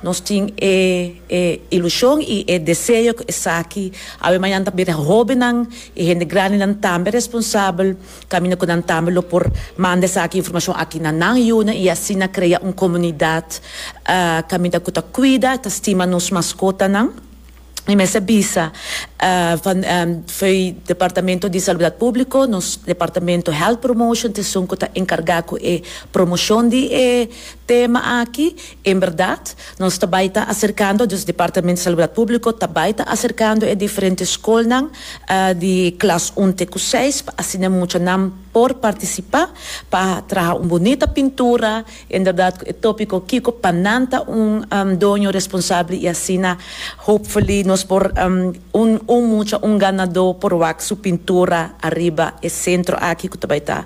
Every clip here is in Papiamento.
Nos tin e e ilushon i e deseo ku esaki awe mañan ta bira hóbennan i hende grandenan tambe responsabel, kaminda ku nan tambe lo por manda esaki informashon aki na nan yunan i asina krea un komunidat kaminda ku ta kuida, ta stima nos maskotanan. Mi mester bisa fo'i Departamento di Salubdat Públiko, nos Departamento Health Promotion ta esun ku ta enkargá ku e promoshon di e tema aki. En bèrdat nos ta bai ta aserkando, dus Departamento Salubdat Públiko ta bai ta aserkando e diferente skolnan di klas un te ku seis pa asina muchanan por partisipá pa traha un bunita pintura, En berdad cu e topico Kico pa nan ta un doño responsable y asina hopefully nos por un un mucha un ganador por wak su pintura ariba e centro aki cu ta bay ta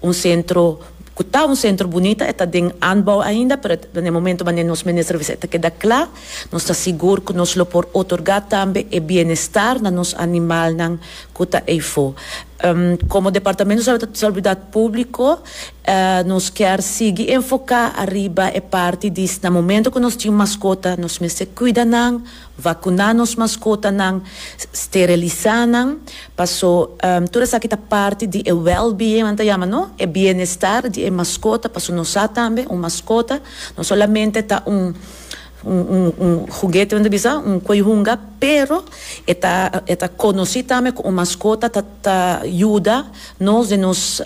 un centro cu ta un centro bunita e ta den anbouw ainda pero den e momento manera nos minister bisa e ta keda cla nos ta sigur cu nos lo por otorga tambe e bienestar na nos animalnan cu ta eyfo. Como departamento de salubridad publico. Nos kier sigui enfoká ariba e parti di na momento ku nos tin maskota nos mester kuida nan, vakuná nos maskotanan, sterilisá nan, paso tur esaki ta parti di e well-being nan ta yama no, e bienestar di e maskota, paso nos sa tambe un maskota no solamente ta un. Un huguete men ta bisa un koihunga pero e ta e ta konosí tambe ku un maskota ta ta yuda nos den nos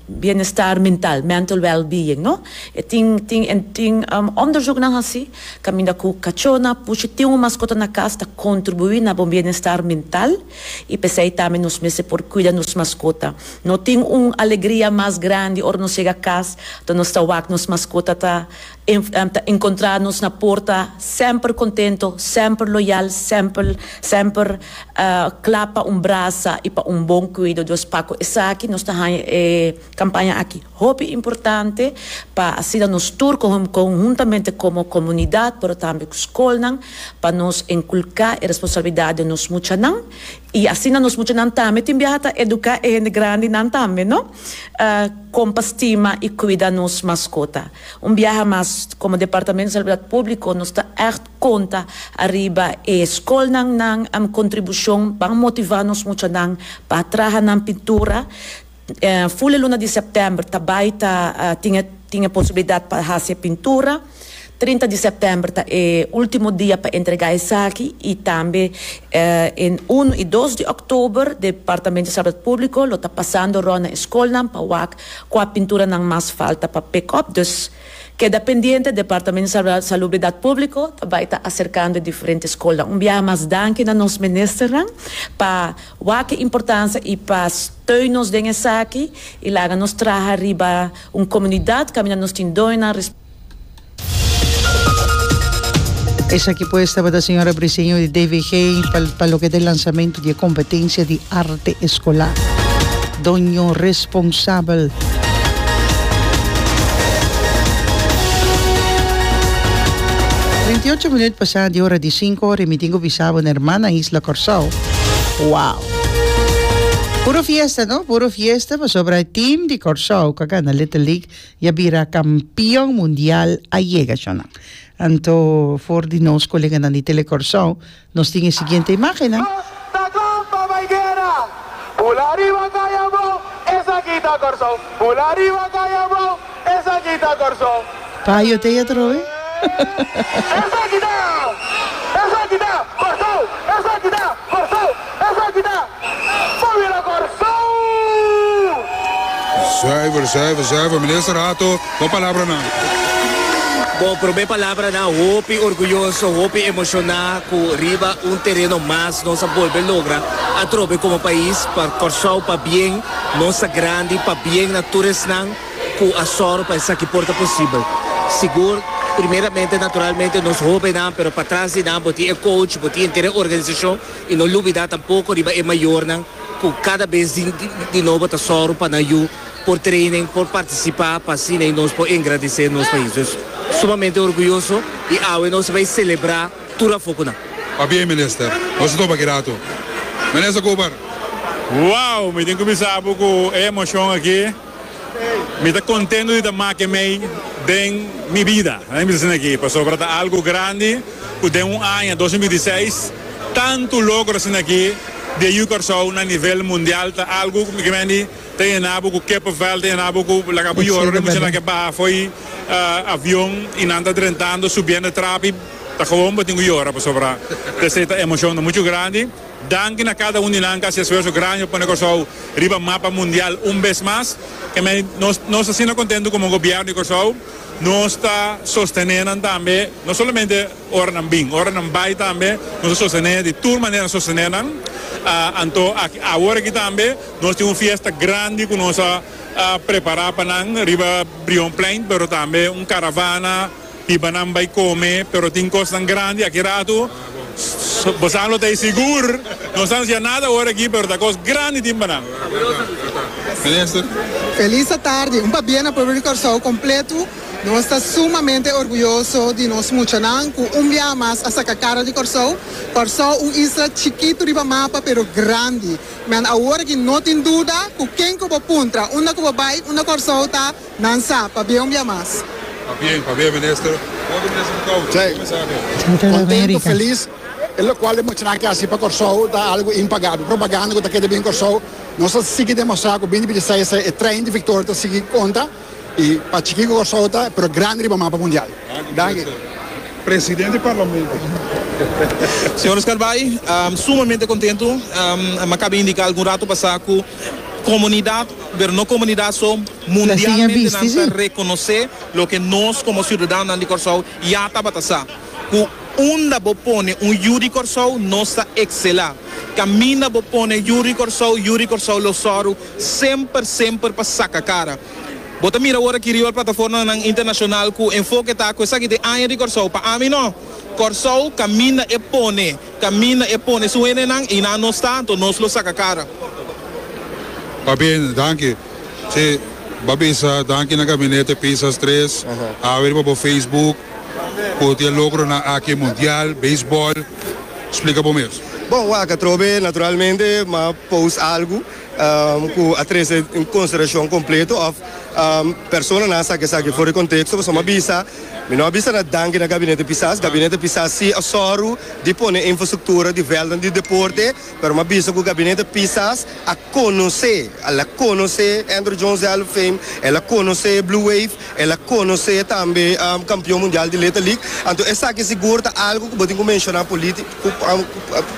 bienestar mental, mental wellbeing, no. E tin tin e tin òndersùknan hasí kaminda ku kachónan por si tin un maskota na kas ta kontribuí na bo bienestar mental i p'esei tambe nos mester por kuida nos maskota. No tin un alegria mas grandi ora nos yega kas unda nos ta wak nos maskota ta Em ta encontra nos na porta semper contento, semper loyal, semper semper cla pa un brasa y pa un bon cuido. Dus paco esaki nos ta haya e campaña aki hopi importante pa asina nos tur conhuntamente como comunidad pero tambe cu scolnan pa nos enculca e responsabilidad den nos muchanan y asina nos muchanan tambe tin biaha ta educa e hende grandinan tambe no con pa stima y cuida nos mascota. Un biaha mas, komo Departamento Salubridad Públiko nos ta ègt konta ariba e skolnan nan am kontribushon pa motivá nos muchanan pa traha nan pintura. Ful e luna di sèptèmber ta bai ta tin e tin e posibilidat pa hasi e pintura. Trinta di sèptèmber ta e último dia pa entregá esaki i tambe e unu i dos di òktober Departamento Salubridad Públiko lo ta pasando rònt na e skolnan pa wak Kua pinturanan mas falta pa pick up dus keda pendiente, Departamento di Salubridad Publico ta bai ta aserkando e diferente skolnan. Un biaha mas danki na nos ministernan pa wak e importancia y pa steun nos den esaki y laga nos traha riba un comunidad kaminda nos tin doñonan, Esaki pues tabata señora Briseño di DVG pa, pa lo que de lanzamento di competencia di arte escolar. Doño responsabel. Veintiucho minuut pasa di hora di cinco, remitingo bisabo na hermana Isla Corsao. Wow! Puro fiesta, no? Puro fiesta, pasobra e team di Corsao, ka gana Little League, Y a bira campeon mundial a yega shonan. Anto for di nos coleganan di Tele Corsou nos tin e siguiente imagennan. Nos ta clan pa bay guera. Pul ariba Cayabo, esaki ta Corsou. Pul ariba Cayabo, esaki ta Corsou. Payo te ya troe. Esaki ta, esaki ta Corsou, esaki ta Corsou. Zuiver, zuiver, zuiver, Minister Hato, bo palabranan. Bo prome palabranan hopi orguyoso, hopi emoshoná ku riba un tereno mas nos a bolbe logra atrobe komo pais pa Kòrsou pa bien, nos ta grandi pa bien na tur esnan ku a sòru pa esaki por ta posibel. Sigur, primeramente, naturalmente, nos hóbennan, pero patras di nan bo tin e coach, bo tin entera e organisashon. I no lubidá tampoko riba e mayornan ku kada bes di nobo ta sòru pa nan yu por training, por partisipá pa asina nos por engradisé nos pais. Nos sumamente orguyoso i awe nos a bai selebrá tur afokunan. Papia e minister. Nos a topa kirato. Minister Cooper. Wow! Mi tin kuminsá apu ku e emocion aki. Mi ta contento di ta make mei den mi bida, mi ta scina aki, pasobra ta algo grandi cu den un aña, dos mil binti seis, tanto logro a scina aki di a yu Carcao na nivel mundial, ta algo cu mi mendi ta yena bo cu kippenvel, ta yena bo cu laga bo yora ora mi scina aki a baha fo'i avion y nan ta drentando, subiendo e trapi, ta gewoon bo tin cu yora, pasobra ta esey ta emocion mucho grandi. Danki na cada un di nan cu haci esfuerso grandi pa pone Corsou riba mapa mundial un bes mas. Kemey, nos nos ta asina contento como Gobierno di Corsou. Nos ta sostene nan tambe, no solamente ora nan bin, ora nan bay tambe nos ta sostene, di tur manera nos sostene nan. Anto, aki, awor aki tambe nos tin un fiesta grandi cu nos a prepara pa nan riba Brionplein, pero tambe un caravana. Pibanan bai come pero tin cosnan grandi aki ratu bosan lo ta e sigur no sa anuncia nada awor aki pero ta cos grandi tin banan. Feliz a tarde un pabia na pueblo di Corsou completo nos ta sumamente orguyoso di nos muchanan cu un biaha mas a saca cara di Corsou Corsou un isla chikito riba mapa pero grandi men awor aki no tin duda cu ken cu bo puntra unda cu bo bai unda Corsou ta Nan sa, pabia un bia mas. Ta bien, pabia minister. Hopi minister ta tau, ta come sa aki. Contento, feliz, e locual e mochinan aki a haci pa Corsou ta algo impagable. Propaganda cu ta keda bini Corsou. Nos ta sigui demostra cu bini dipiti esai esai e train di victoria ta sigui conta y pa chiki cu Corsou ta, pero grandi riba mapa mundial. Danki. Presidente di Parlamento. Señor Oscar Bay, sumamente contento. M'a caba indica algun rato pasa cu comunidad. Pero no comunidad so, mundialmente nan ta reconoce loke nos como ciudadanonan di Corsou ya tabata sa. Cu unda bo pone un yu di Corsou nos ta excela. Caminda bo pone yu di Corsou, yu di Corsou lo sòru semper semper pa saca cara. Bo ta mira awor aki riba el plataformanan internacional cu enfoke ta cu esaki ta e aña di Corsou. Pa ami no. Corsou caminda e pone. Camina e pone su henenan y nan no sta anto nos lo saca cara. Ta bien, danki. Si, bo bisa danki na Gabinete Pisas Tres, awe riba bo Facebook, cu tin e logronan aki, Mundial, Baseball. Splica bo mes. Bon, wak atrobe naturalmente m'a post algu cu a trece un consideracion completo of personanan a saca esaki for di contexto, pasobra m'a bisa. Mi no a bisa na danki na Gabinete Pisas. Gabinete Pisas si a sòru di pone infrastruktura di vèltnan di deporte, pero mi a bisa ku Gabinete Pisas a konosé, el a konosé Andruw Jones Hall of Fame, el a konosé Blue Wave, el a konosé tambe kampion mundial di Little League. Anto esaki sigur ta algu ku bo tin ku menshoná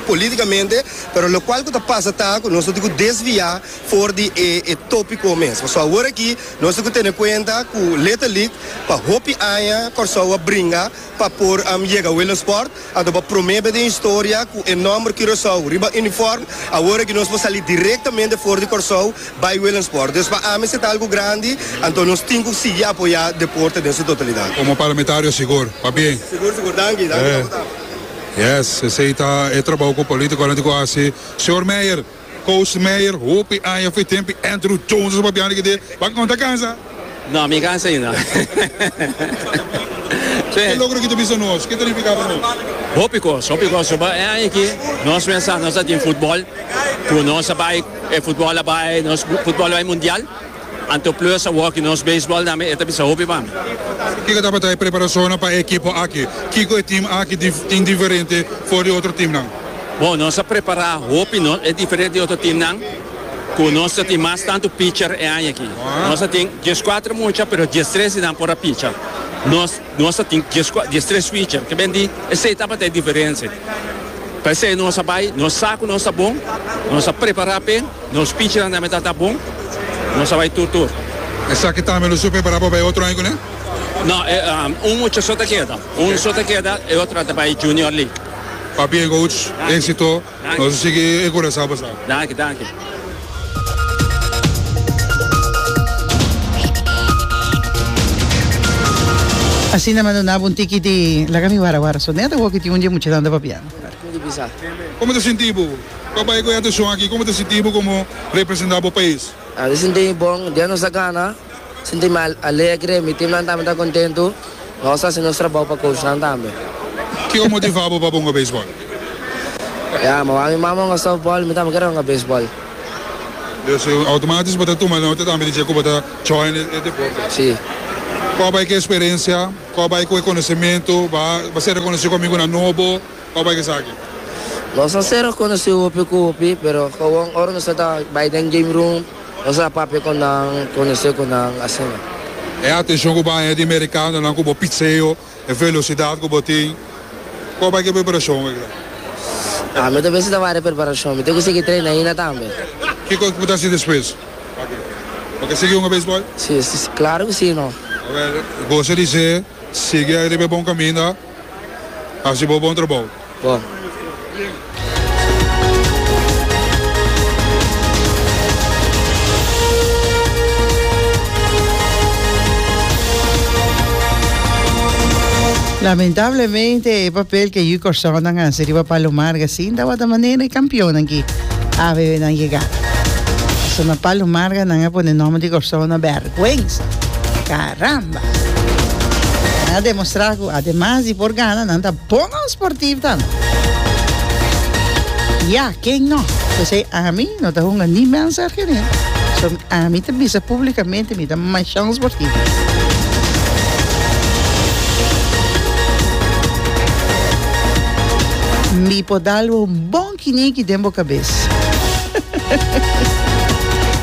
polítikamente, pero lokual ku ta pasa ta ku nos no tin ku desviá for di e tópiko mes. So aworakí. Nos tin ku tene kuenta ku Little League pa hopi aña Kòrsou a bringa pa por yega Willem Sport. Anto pa promé be den historia ku e nòmber Curaçao riba unifòrm, awor aki nos por sali direktamente for di Kòrsou bai Willem Sport. Dus pa ami esei ta algu grandi, anto nos tin ku sigui apoyá deporte den su totalidat. Komo parlamentario sigur, pabien. Sigur sigur, danki, danki kapitán. Yes, esei ta e trabou ku polítikonan tin ku hasi. Señor Meyer. Koos Meijer, Hopi aña f'e tempi Andrew Jones a papiando di kende, Pak no ta kansa? No, mi kansa ainda. Ke logro ki ta bisa nos? Ke ta nifiká pa nos? Hopi kos, hopi kos. Soba e aña aki nos pensa nos a tin futbòl, ku nos a bai, e futbòl a bai, nos futbòl a bai mundial. Anto Plus a wòk di nos beisbòl tambe, e ta bisa hopi pa mi. Kiko tabata e preparashonnan pa e ekipo aki? Kiko e tim aki tin diferente for di otro timnan? Bon, nos a prepará hopi, nos e diferente di otro timnan ku nos ta tin mas tantu picher e aña aki. Nos a tin dieskuater mucha, pero diestres di nan por a picha. Nos. Nos a tin dies cua, dies tres switcher, ke ben di, esey tabata e diferencia. Pa esey nos a bay, nos sa cu nos ta bon, nos a prepara p'e, nos pichinan tambe ta ta bon, nos a bay tur tur. Esaki tambe lo su prepara pa bay otro aña cune? No, e, um, un mucha so ta keda, un so ta keda, e otro ta bay Junior League. Papi e goats, exito. Nos a sigui e Curaçao pasado. Asina mando naba un tiki di laga mi wara wara so nèt awo ki tin un dje muchanan ta papiando. Como ta sinti bo pa bai cu e atencion aki? Como ta sinti bo como representa bo pais? Di sinti mi bon, dia nos a gana. Sinti mi alegre, mi tim nan tambe ta kontentu. Nos ta hasi nos trabou pa coach nan tambe. Kiko motivá bo pa bo hunga beisbòl? Ya, mawá mi mama hunga softbòl, mi tambe kere hunga beisbòl. Dus, outomático bo ta tuma nota tambe di dje ku bo ta join e deporte. Sí. Kua bai ku e sperensia? Kua bai ku e konosementu? Bo a ser rekonosí ku amigunan nobo? Kua bai ku esaki? Nos a ser rekonosí hopi ku hopi, pero gewoon ora nos ta bai den game room, Nos a papia con nan, conoce cu nan asina. E atencion cu bo haña di mericanonan cu bo pitseo, e velocidad cu bo tin. Cua bay cu e preparacion wey la? Ami ta bisa ta wari e preparacion. Mi tin cu sigui traina ahinda tambe. Kico cu bo ta haci despues? Bo ke sigui hunga beisbol? Si, si, si. Claro cu si, no. Gosa di sey, sigui ariba e bon caminda. Hasi bo bon trabou. Bo. Lamentablemente e papel ke yu Kòrsou nan hasi riba Palomarga sin tawata manera e kampionnan ki ABB nan yega. Pasobra Palomarga nan a pone nòmber di Kòrsou na bèrgwensa. Karam! Nan a demostrá ku ademas di por gana, nan ta bono sportivo tambe. Ya, ken no? P'esei ami no ta hunga ni mi ansar Gene, so ami ta bisa públikamente mi ta mashon sportivo. Mi por dal bo un bon. Kini ki den bo kabes?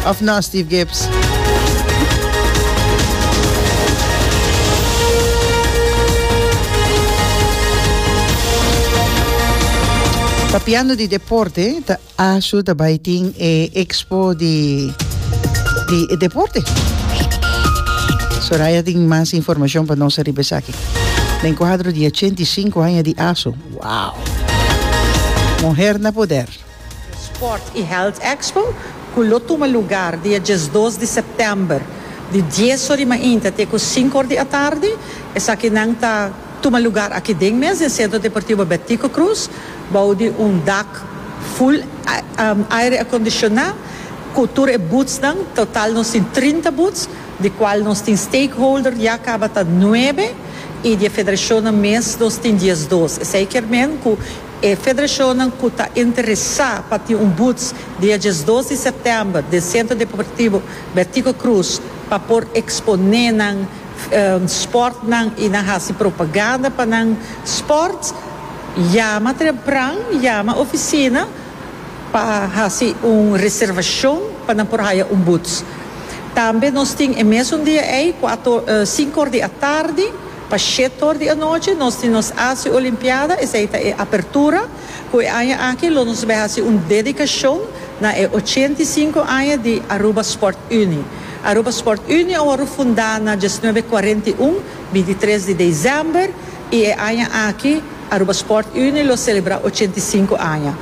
Of no Steve GibbsPapiando di deporte ta ashu ta bai tin e expo di e deporte. Soraya tin mas informacion pa nos ariba esaki. Na enkuadro di ochenta i sinku aña di ashu. Wow! Muher na poder! E Sport y Health Expo, cu lo tuma lugar di e diesdos di september di dies or di mainta te cu sinku or di atardi, esakinan ta tuma lugar aki den mes den Centro Deportivo Bertico Cruz, bou di un dak full aire acondiciona cu tur e boothsnan, total nos tin trinta booths, di cual nos tin stakeholder ya caba ta nuebe. I di e federashonnan mes nos tin diesdos. Esei kier men ku e federashonnan ku ta interesá pa tin un buts dia diesdos di sèptèmber den Centro Deportivo Bertico Cruz pa por eksponé nan spòrtnan i nan hasi propaganda pa nan spòrt, yama trempran, yama ofisina. Pa hasi un reservashon pa nan por haya un buts. Tambe nos tin e mesun dia ei, kuater or, sinku or di atardi pa shet or di anochi, nos tin nos Asia Olimpiada, esei ta e apertura, ku e aña aki lo nos bai hasi un dedikashon na e ochenta i sinku aña di Aruba Sport Unie. Aruba Sport Unie a wòrdu fundá na diesnuebe kuarenta i un, bintitres di desèmber, I e aña aki Aruba Sport Unie lo selebrá ochenta i sinku aña.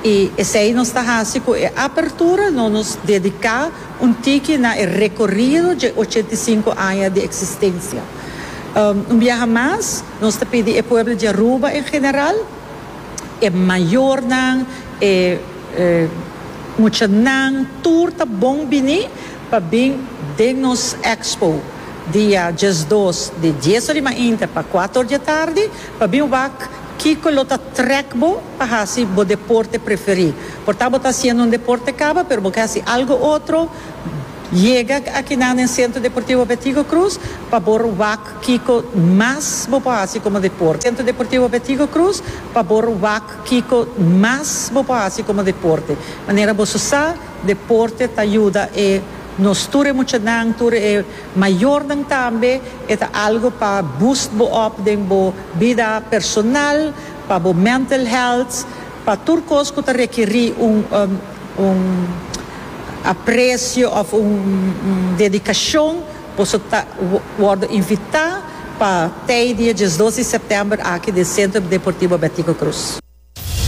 I esei nos ta hasi ku e apertura no nos dediká un tiki na e rekorido dje ochenta i sinku aña di eksistensia. Un biaha mas nos ta pidi e pueblo di Aruba en general, e mayornan, e muchanan tur ta bon biní. pa bin den nos Expo dia diesdos di dies ora di mainta pa kuater ora di atardi pa bin wak kiko lo ta trèk bo pa hasi bo deporte preferí. Por ta bo ta hasiendo un deporte kaba pero bo ke hasi algu otro, yega akinan den Centro Deportivo Betigo Cruz pa bo wak kiko mas bo por hasi komo deporte. Centro Deportivo Betigo Cruz pa bo wak kiko mas bo por hasi komo deporte. Manera boso sa. Deporte ta yuda e nos tur e muchanan, tur e mayornan tambe. E ta algo pa boost bo op den bo bida personal, pa bo mental health, pa tur cos cu ta requiri un un aprecio of un dedicacion. Boso ta wordo invita pa tey dia diesdos di september aki den Centro Deportivo Betico Cruz.